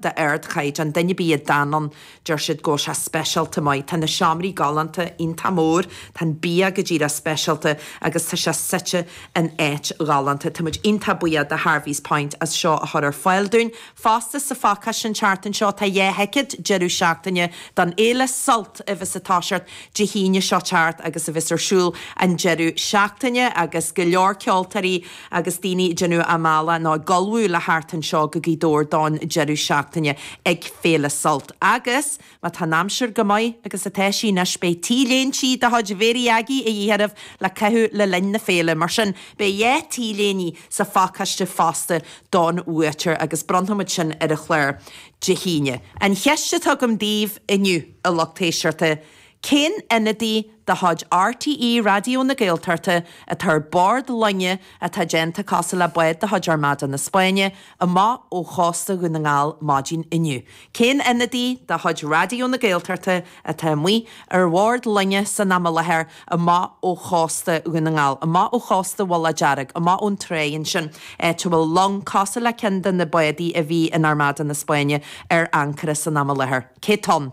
d'ardchaighdeán. Duine ar bith a d'fhan ann, deir siad go bhfuil sé speisialta maith. Tá na seomraí galánta, iontach mór, tá an bia go díreach speisialta agus tá sé suite in áit ghalánta. Tá muid iontach buíoch de Harvey's Point as seo a chur ar fáil dúinn. Fosta, sa phacáiste, an tseachtain seo, tá dhá thicéad deireadh seachtaine don fhéile Sult, a bheas ag toiseacht Dé hAoine seo thart agus a bheas ar siúl an deireadh seachtaine agus go leor ceoltóirí, agus daoine ag déanamh a mbealach nó ag ullmhú le theacht anseo go Gaoth Dobhair don deireadh seachtaine ag Féile Sult. Agus, má tá an aimsir go maith, agus atá sí anois, beidh t-léinte de chuid Mhéirí Aggie a dhíth oraibh le caitheamh le linn na féile. Mar sin, beidh dhá t-léine sa phacáiste fosta don bhuaiteoir agus bronnfaimid sin ar an chlár Dé hAoine. An cheist atá agam daoibh inniu, a lucht éisteachta, Cén ionadaí de chuid RTÉ Raidió na Gaeltachta atá ar bhord loinge atá déanta cosúil le bád de chuid Armada na Spáinne amach ó chósta Dhún na nGall maidin inniu? Cén ionadaí de chuid Raidió na Gaeltachta atá amuigh ar bhord loinge san am i láthair amach ó chósta Dhún na nGall, amach ó chósta Bhaile Dearg, amach ón tráigh ansin áit a bhfuil long cosúil le ceann de na bádaí a bhí in Armada na Spáinne ar ancaire san am i láthair? Cé tá ann?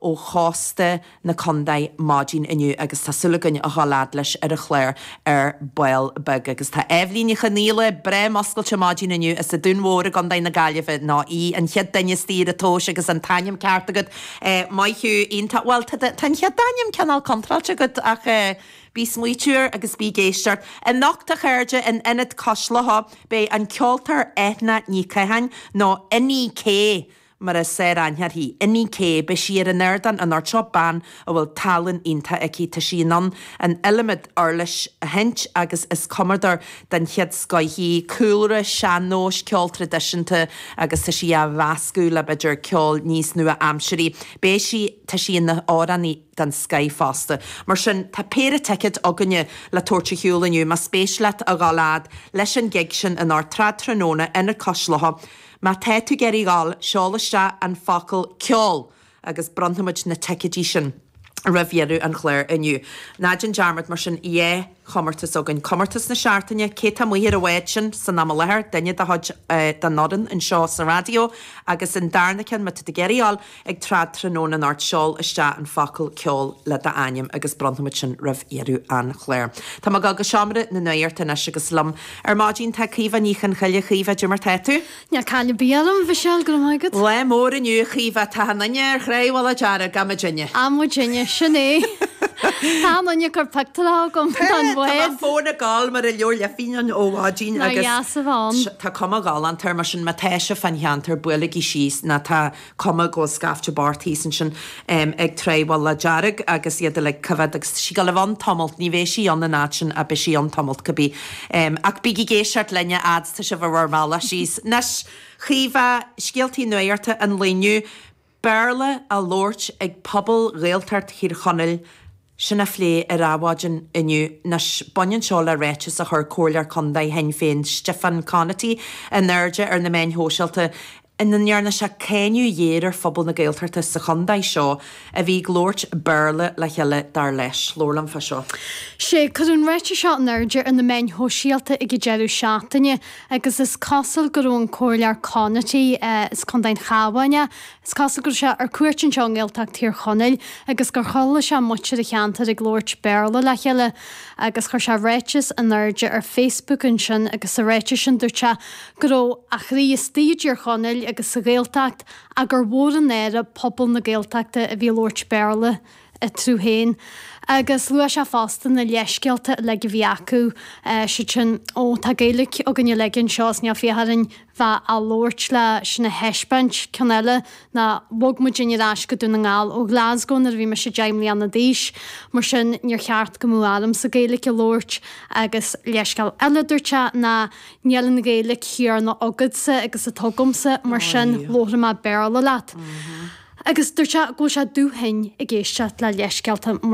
ó chósta na condae maidin inniu agus tá súil againn a dhul fhad leis ar an chlár ar ball beag agus tá Eibhlín Ní Chonghaile breá muscailte maidin inniu as an Dún Mhór i gCondae na Gaillimhe nó í an chéad duine is daoire tomhais agus an t-ainm ceart agat maith thú iontach bhuel tá an chéad t-ainm cineál contráilte agat ach bí ag smaoiteamh agus bí ag éisteacht anocht a chairde in Ionad Cois Locha beidh an ceoltóir Eithne Ní Chatháin nó Inni-K mar is fearr aithne uirthi. Inni K, beidh sí ar an ardán anocht, bean a bhfuil tallann iontach aici, tá sí in ann an iliomad uirlis a sheinnt agus is cumadóir den chéad scoith í, cúlra sean-nóis, ceol traidisiúnta agus tá sí á mheascadh le b'fhéidir ceol níos nua-aimsirí. Beidh sí, tá sí ina h-amhránaí den scoith fosta. Mar sin, tá péire ticead againne le tabhairt a shiúl inniu, más spéis leat a dhul fhad leis an gig sin in Trad Tráthnóna, Ionad Cois Locha, Má tá tú ag iarraidh a dhul, seol isteach an focal 'ceol' agus bronnfaimid na ticeidí sin roimh dheireadh an chláir inniu. Ná déan dearmad, mar sin, dhá chomórtas againn. Comórtas na Seachtaine, cé tá amuigh ar an bhád sin san am i láthair, duine de chuid an fhoireann anseo sa raidió, agus an darna ceann, má tá tú ag iarraidh a dhul, Ag troid tráthnóna anocht seol isteach an focal ceol le d'ainm agus bronnfaimid sin roimh dheireadh an chláir. Tá mé ag dul go seomra na nuacht anois agus liom ar maidin tá Caoimhe Ní Chonghaile. Caoimhe, caidé mar atá tú? Níl caill ar bith orm, a Mhichelle, go raibh maith agat. Lá mór inniu, a Chaoimhe. Tá an duine ar chré, bhuel, a dearadh, gabh mo dhuine. Gabh mo dhuine, sin é. Tá an duine ag cur pictiúirí chugam den bhád. Tá mo fón ag gol mar a bheadh lifín ó mhaidin agus tá cuma ghalánta air mar sin má tá sibh fan cheantar buailigí síos nó tá cuma go bhfuil scaifte breá thíos ansin ag traidhfil le dearg agus iad uilig ag coimhead agus tá sí go mbeidh sí ann tamalt ní bheidh sí ann in áit sin a beidh sí ann tamalt go bí ach bígí ag éisteacht linn a fhad is atá sibh ar bhur mbealach síos anois Caoimhe, scéaltaí nuachta an lae inniu, Béarla á labhairt ag pobal Ghaeltacht Thír Chonaill, Sin á phlé ar Adhmhaidin inniu. Anois, baineann seo le ráiteas a chuir Comhairleoir Contae Shinn Féin Stiofán Conaty in airde ar na meáin shóisialta ina ndearna sé cáineadh géar ar phobal na Gaeltachta sa chontae seo a bhí ag labhairt Béarla le chéile, dar leis. Labhair liom fá seo. Sea, cuireadh an ráiteas seo in airde ar na meáin shóisialta ag an deireadh seachtaine agus is cosúil go raibh an Comhairleoir Conaty, as Contae an Chabháin é, Is cosúil go raibh sé ar cuairt anseo i nGaeltacht Thír Chonaill agus gur chuala sé muintir an cheantair ag labhairt Béarla le chéile agus chuir sé ráiteas in airde ar Facebook ansin agus sa ráiteas sin dúirt sé go raibh a chroí istigh i dTír Chonaill agus sa Ghaeltacht ach gur mhór an náire pobal na Gaeltachta a bhí ag labhairt Béarla eatarthu féin. Agus luaigh sé fosta na leithscéalta uilig a bhí acu, is iad sin, Ó, tá Gaeilge againn uilig anseo is níl fiacha orainn bheith á labhairt le sin a thaispeáint. Ceann eile ná, Bhog muid féin ar ais go Dún na nGall ó Glasgow nuair a bhí mise deich mbliana d'aois, mar sin níor cheart go mbeadh ormsa Gaeilge a labhairt. Agus leithscéal eile a dúirt sé ná, Níl an Ghaeilge chéanna agatsa agus atá agamsa, mar sin labharfaidh mé Béarla leat. Agus dúirt sé go bhfuil sé dubh-thinn ag éisteacht le leithscéalta mar.